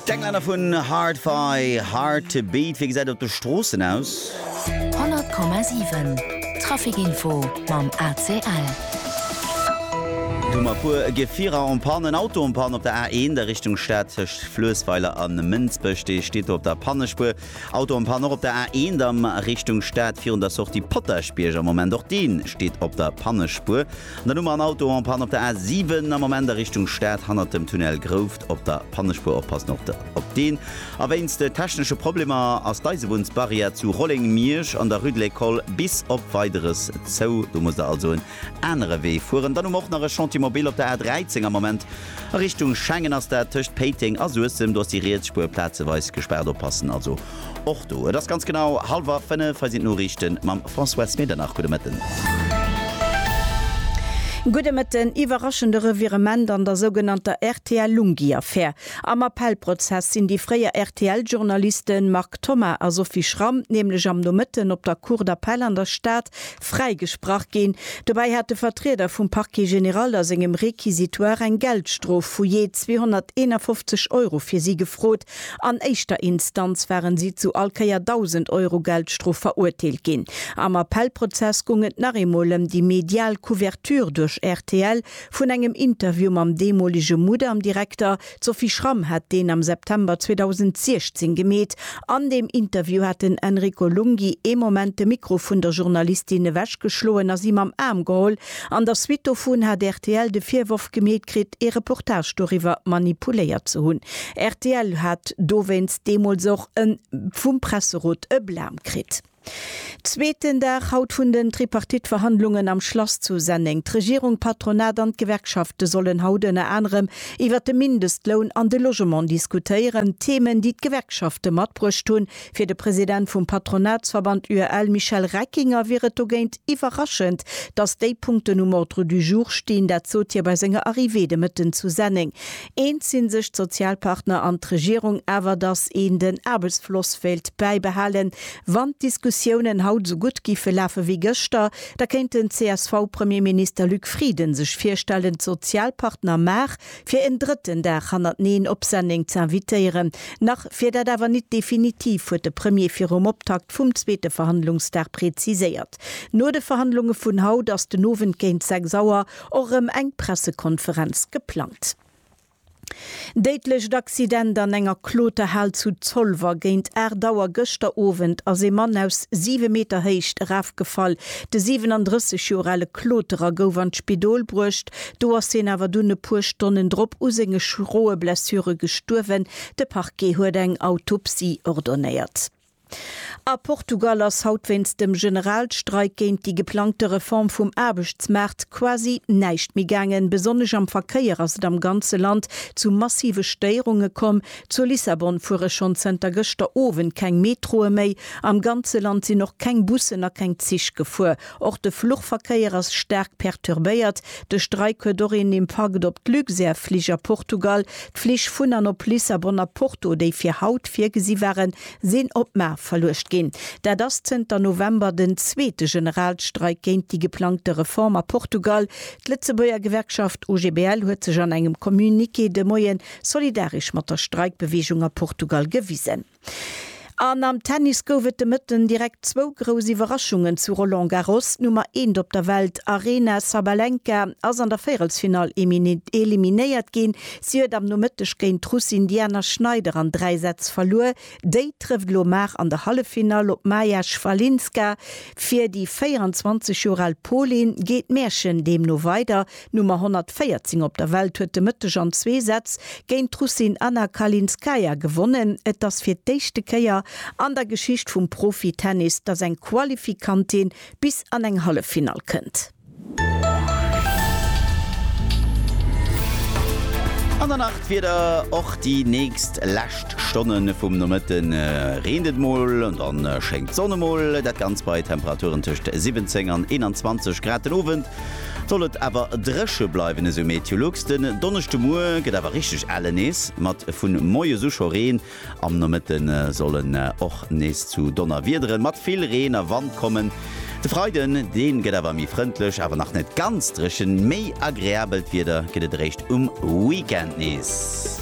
D'Englänner vun Hard Fi, Hard to Beat, wéi gesäit et op de Stroossen aus? 100,7 Traficinfo mam ACL. Et hu mar e puer Gefierer en panne. En Auto en panne op der A1 a Richtung Stad tëscht Fluessweiler a Mënsbech. Dee steet do op der Pannespuer. Auto en panne och op der A1 a Richtung Stad virun der Sortie Potaschbierg am Moment. Och dee steet op der Pannespuer. An dann hu mer en Auto en panne op der A7 am Moment a Richtung Stad, hannert dem Tunnel Grouft op der Pannespuer. Oppassen och op deen. A wéinst technesche Problemer ass d'Eisebunnsbarrière zu Rolleng-Miersch an der Rue de l'École bis op Weideres zou. Do musst Der also en anere Wee fueren. Dann hu mer och nach e Chantier mobile op der A13 am Moment a Richtung Schengen ass dat tëscht Péiteng a Suessem. Do ass déi riets Spuer plazeweis gespaart. Oppassen also. Och do, et ass ganz genau halwer 5, hei sinn d'Noriichten mam François Medernach. Gudde Mëtten. Gudde Mëtten. Iwwerraschende Revirement an der sougenannter RTL-Lunghi-Affär. Am Appellprozess sinn déi fréier RTL-Journaliste Marc Thomas a Sophie Schram nämlech am Nomëtten op der Cour d'Appel an der Stad fräigesprach ginn. Dobäi hat de Vertrieder vum Parquet général a sengem Réquisitoire eng Geldstrof vu jee 251 Euro fir si gefrot. An éischter Instanz waren si zu all Kéier 1.000 Euro Geldstrof verurteelt ginn. Am Appellprozess goung et nach eemol ëm déi medial Couverture duerch rtl vun engem Interview mam deemolege Mudam-Direkter. D'Sophie Schramm hat deen am September 2016 gemeet. An deem Interview hat den Enrico Lunghi ee Moment de Mikro vun der Journalistin ewechgeschloen a si mam Aarm geholl, An der Suite dovun hat rtl de Virworf gemeet kritt, ee Reportage doriwwer manipuléiert ze hunn. Rtl hat dowéinst deemools och e vum Presserot e Blam kritt. Zweeten Dag haut vun den Tripartite-Verhandlungen am Schlass zu Senneng. D'Regierung, d'Patronat an d'Gewerkschafte sollen haut ënner anerem iwwer de Mindestloun an de Logement diskutéieren, Themen, déi d'Gewerkschafte matbruecht hunn, Fir de President vum Patronatsverband UEL Michel Reckinger wier et dogéint iwwerraschend, datt déi Punkten um Ordre du jour stinn. Dat sot hie bei senger Arrivée de Mëtten zu Senneng. Eens si sech d'Sozialpartner an d'Regierung awer, datt een den Aarbechtsfloss wéilt bäibehalen. Wann d'Diskussiounen haut esou gutt géife lafe wéi gëschter, da kéint den CSV-Premierminister Luc Frieden sech virstellen, d'Sozialpartner mar fir en drëtten Dag hannerteneen op Senneng ze invitéieren. Nach wier dat awer nit definitiv, huet de Premier virum Optakt vum zweete Verhandlungsdag preziséiert. No de Verhandlunge vun haut ass den Owend géint 6 Auer och erëm eng Pressekonferenz geplangt. Déidlecht Accident an enger Kloterhal zu Zolwer. Géint 8 Auer gëschter Owend ass ee Mann aus 7 Meter Héicht erafgefall. De 37 Joer ale Kloterer gouf an d'Spidol bruecht, Do ass hien awer dunn e puer Stonnen drop u senge schroe Blessure gestuerwen. De Parquet huet eng Autopsie ordonéiert. A Portugal ass haut wéinst dem Generalstreik géint déi geplangte Reform vum Aarbechtsmaart quasi näischt méi gaangen. Besonnesch am Verkéier ass et am ganze Land zu massive Stéierunge komm. Zu Lissabon fuere schonn zënter gëschter Owend keng Metroe méi. Am ganze Land sinn och keng Bussen a keng Zich gefuer. Och de Fluchverkéier ass staark perturbéiert. De Streik huet och een Impakt op d'Luxair Flich a Portugal. D'Flich vun an op Lissabon a Porto, déi fir haut virgesi waren, sinn op mar verluecht ginn. Dat ass zënter November den zweete Generalstreik géint déi geplangte Reform a Portugal. D'Lëtzebuerger Gewerkschaft OGBL huet sech an engem Communiqué de Moie solidaresch mat der Streikbeweegung a Portugal gewisen. An am Tennis gouf et de Mëtten direkt zwou grouss Iwwerraschungen zu Roland Garros. D'Nummer eent op der Welt Aryna Sabalenka ass an der Véierelsfinall eliminéiert ginn. Si huet am Nomëtteg géint d'Russin Diana Schneider an dräi Sätz verluer. Déi trëfft elo mar an der Halleffinall op d'Maja Svalinska. Fir déi 24 Joer al Polin geet d'Märchen deemno weider. D'Nummer 114 op der Welt huet de Mëtteg an zwee Sätz géint d'Russin Anna Kalinskaya gewonnen. Et ass fir d'éischte Kéier an der Geschicht vum Profi-Tennis, datt eng Qualifikantin bis an eng Halleffinall kënnt. An der Nacht wier der och déi nächst lescht Stonne vum Nomëtte reent et mol, dann schéngt d'Sonn emol. Dat Ganzt bei Temperaturen tëscht 17 an 21 Grad den Owend. Soll et awer dréche bleiwen, esou Meteolux. Den Donneschdemuer gëtt awer richteg elle nees, mat vu moies u scho Reen. Am Nomëtte soll en och nees zu Donnerwiedere mat vill Reen a Wand kommen. De Freiden, dee gëtt awer méi frëndlech, awer nach net ganz dréchen. Méi agreabelt Wieder gëtt et eréischt um Weekend nees.